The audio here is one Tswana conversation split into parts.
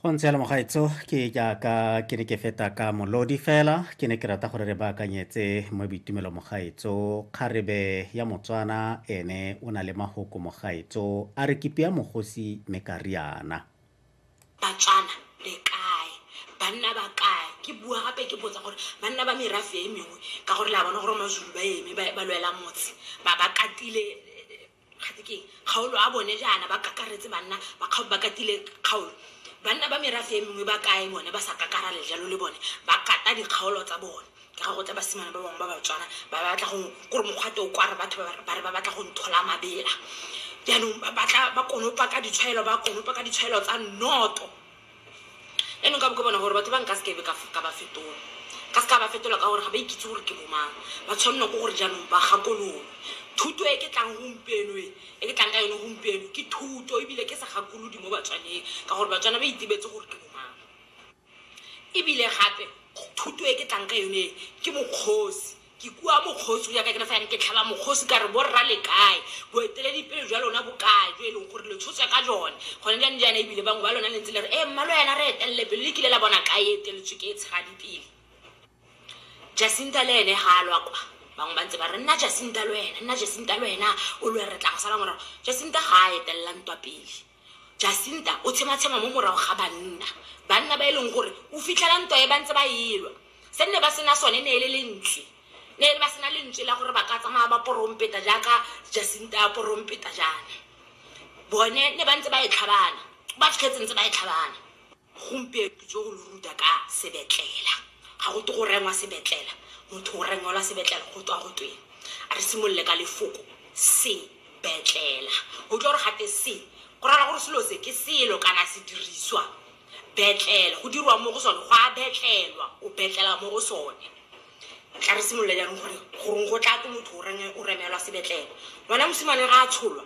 go ntse ya lemogaetso ke jaaka ke ne ke feta ka molodi fela ke ne ke rata gore re baakanyetse mo boitumelo mogaetso kgarebe ya motswana ene o na le mahoko mogaetso a re kipi ya mogosi me ka riana batswana le kae banna ba kae ke bua gape ke botsa gore banna ba merafe e mengwe ka gore la bona gore mazulu ba eme ba lwela motse ba ba katile Gape ke kgaolo a bone jaana ba kakaretse banna ba kgaolo ba katile kgaolo. Banna ba merafe e mengwe ba kae bone ba sa kakarale jalo le bone ba kata dikgaolo tsa bone? Ka ga go tla basimane ba bangwe ba Batswana ba ba batla go kore mokgwate o kware batho ba ba re ba batla go nthola mabela. Jaanong ba batla ba konopa ka ditshwaelo ba konopa ka ditshwaelo tsa nnoto. Eno nka bo ke bona gore batho ba nka se kebe ka f- ka ba fetola ka se ka ba fetola ka gore ga ba ikitse gore ke bomang ba tshwanelwa ko gore jaanong ba gakololwe thuto e ke tlang gompieno e e ke tlang ka yone gompieno ke thuto ebile ke segakolodi mo batswaneng ka gore batswana ba itebetse gore ke bomang ebile gape thuto e ke tlang ka yone e ke mokgosi Ke kua mokgosi go ya ka ke ne fa ke tlhaba mokgosi ka re borra le kae boeteledipele jwa lona bokae jo e leng gore le tshotswa ka jone gone jane jaana ebile bangwe ba lona le ntse le re ee mmalo yana re etelele pele le kile la bona kae e eteletswe ke e tshegadi pele jacinta le ene ga a lwa kwa bangwe ba ntse ba re nna jacinta le wena nna jacinta le wena o lwe re tla go sala morago jacinta ga a etelela ntwa pele Jacinta o tshematshema mo morago ga banna, banna ba e leng gore o fitlhela ntwa e ba ntse ba elwa. Se nne ba sena sone ne e le lentswe, ne e le ba sena lentswe la gore ba ka tsamaya ba porompeta jaaka Jacinta a porompeta jaana. Bone ne ba ntse ba e tlhabana, ba fitlhetse ntse ba e tlhabana. gompieno tso go lo ruta ka sebetlela ga go te go rengwa sebetlela motho o rengwela sebetlela go tswa go tweng a re simolole ka lefoko sebetlela o tlo gore gate se go raya gore selo se ke selo kana sediriswa betlela go dirwa mo go sone go a betlelwa o betlela mo go sone tla re simolola jaanong gore goreng go tla ko motho o renge- o remelwa sebetlelo ngwana mosimane ga a tsholwa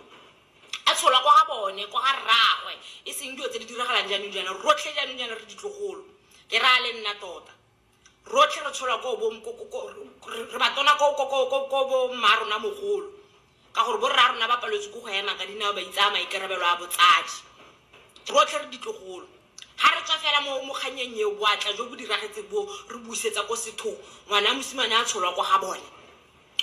A tsholwa kwa ga bone, kwa ga rraagwe, e seng dilo tse di diragalang jaanong jaana. Rotlhe jaanong jaana re ditlogolo, ke raya le nna tota. Rotlhe re tsholwa ko bo, re batona ko bo mma rona mogolo, ka gore bo rra rona ba paletswe ke go ema ka dinao, ba itsaya maikarabelo a botsadi. Rotlhe re ditlogolo. Ga re tswa fela mo kgannyeng eo, boatla jo bo diragetseng boo re busetsa ko sethong. Ngwana wa mosimane a tsholwa kwa ga bone,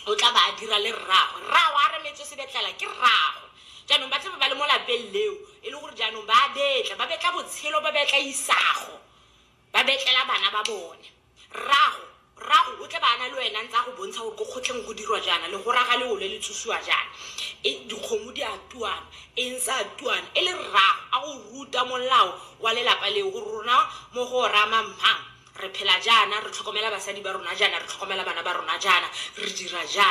o tla ba a dira le rraagwe. Rraagwe a remetswe sebetlela ke rraagwe. Jaanong ba tlabe ba le mo lapeng leo e le gore jaanong ba a betla, ba betla botshelo, ba betla isago, ba betlela bana ba bone. Rrago, rrago o tle ba na le wena ntse a go bontsha gore ko kgotlheng go dirwa jaana, legora ga le ole le tsusiwa jaana, e, dikgomo di a tuana, eng sa tuana, e le rrago a go ruta molao wa lelapa leo gore rona mo go ora mammang re phela jaana, re tlhokomela basadi ba rona jaana, re tlhokomela bana ba rona jaana, re dira jaana.